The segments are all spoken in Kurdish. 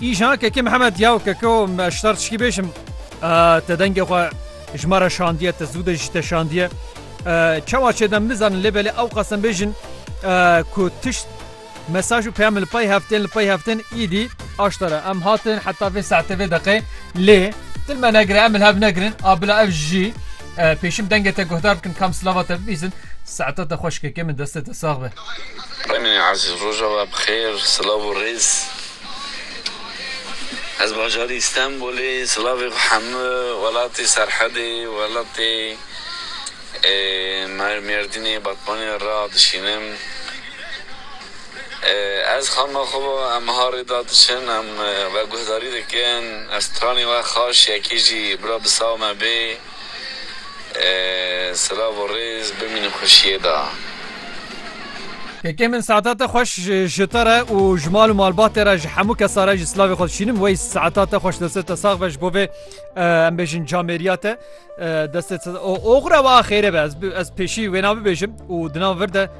Îjan kekê Mihemed yaw keko me ji tar tişkî bêjim te dengê xwe ji me re şandiye te zû de jî te şandiye çawa çê dem nizanin lê belê ew qasem bêjin ku tişt mesaj û peyam li pey heftên li pey heftên îdî aştara em hatin heta vê saetê vê deqê lê dil me negire em li hev negirin a bila ev jî Pêşim dengê te guhdar bikin kam silava te bibîzin. Saeta te xweş keke min destê te sax be. Tenê Ezîz roja we bi xêr silav û rêz. Ez bajarî Stenbolê silavê xwe hemû welatê Serhedê welatê Mêrdînê Batmanê ra dişînim. Ez xanima xwe bo em ha rê da diçin, em we guhdarî dikin, ez stranê we xaş yekê jî bira bi saw me bê. Silav û rêz, bimînin xweşiyê da. Kekê min saetate xweş ji te re û ji mal û malbatê re ji hemû kesa re jî silavê xwe dişînim wey saeta te xweş destê te sax be ji bo vê em bêjin camêriya te destê te oxre wa xêrê be ez pêşî wêna bibêjim û di nav vir de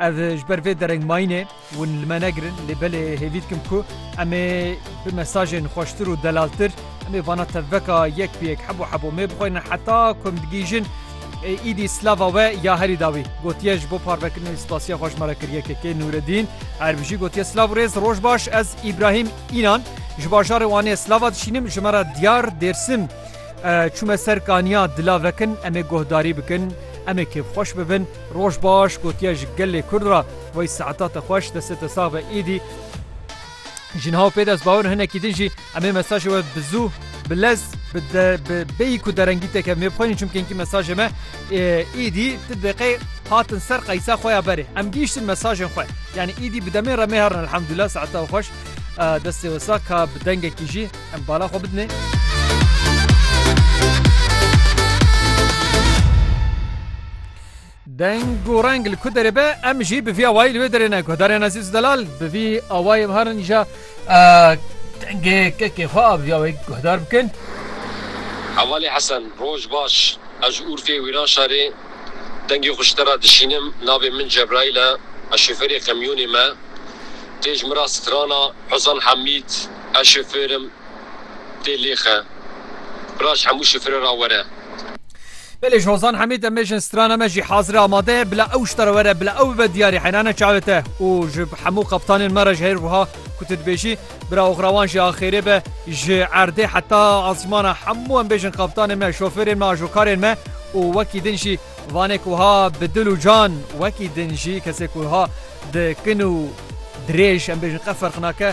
Ev ji ber vê dereng mayînê hûn li me negirin lê belê hêvî dikim ku em ê bi mesajên xweştir û delaltir em ê vana tevveka yek bi yek hebo hebo mê bixwînin heta ku em digihîjin êdî slava we ya herî dawî gotiye ji bo parvekirinê wî spasiya xwe ji me re kir YKK Nûredîn Erbijî gotiye silav û rêz roj baş ez Îbrahîm Înan ji bajarê Wanê slava dişînim ji me re diyar Dêrsim Çûme ser kaniya dila vekin em ê guhdarî bikin, em ê kêfxweş bibin. Roj baş gotiye ji gelê Kurd re wey saeta te xweş destê te sax be êdî jinha û pê dest bawir hinekî din jî em ê mesajê we bi zû bi lez bi bêyî ku derengî te kevnê bixwînin çimkî hinkî mesajê me êdî ti deqê hatin ser qeysa xwe ya berê em gihîştin mesajên xwe yanî êdî bi demê re mêherin elhamdulillah saeta xweş destê we sax ka bi dengekî jî Em bala xwe Deng û reng li ku derê be em jî bi vî awayî li wê derê ne guhdarên ezîz delal bi vî awayê herin îja dengê kekê xwe a bi vî awayî guhdar bikin. Hevalê Hesen roj baş ez ji Urfê Wîran şarê dengê xwe ji te re dişînim navê min Cebraîl e ez şofêrê qemyonê me tê ji min re strana Hozan Hemîd. Ez şoför im tê lêxe. Raj hemû şofere ra were. Belê ji Hozan Hemîd em ê jin strana me jî hazir e amade ye bila ew ji te re were bila ew bibe diyarî heynane çavê te û ji hemû qeptanên me re ji hêr wiha ku tu dibêjî bira oxrawan jî axêrê be ji erdê heta asmana hemû em bê jin qeptanên me şofêrên me ajokarên me û wekî din jî Vanê ku ha bi dil û can wekî din jî kesê ku ha di kin û dirêj em bêjin qe ferq nake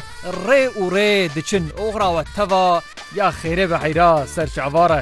rê û rê diçin oxra we teva ya xêrê ve heyra ser çavare.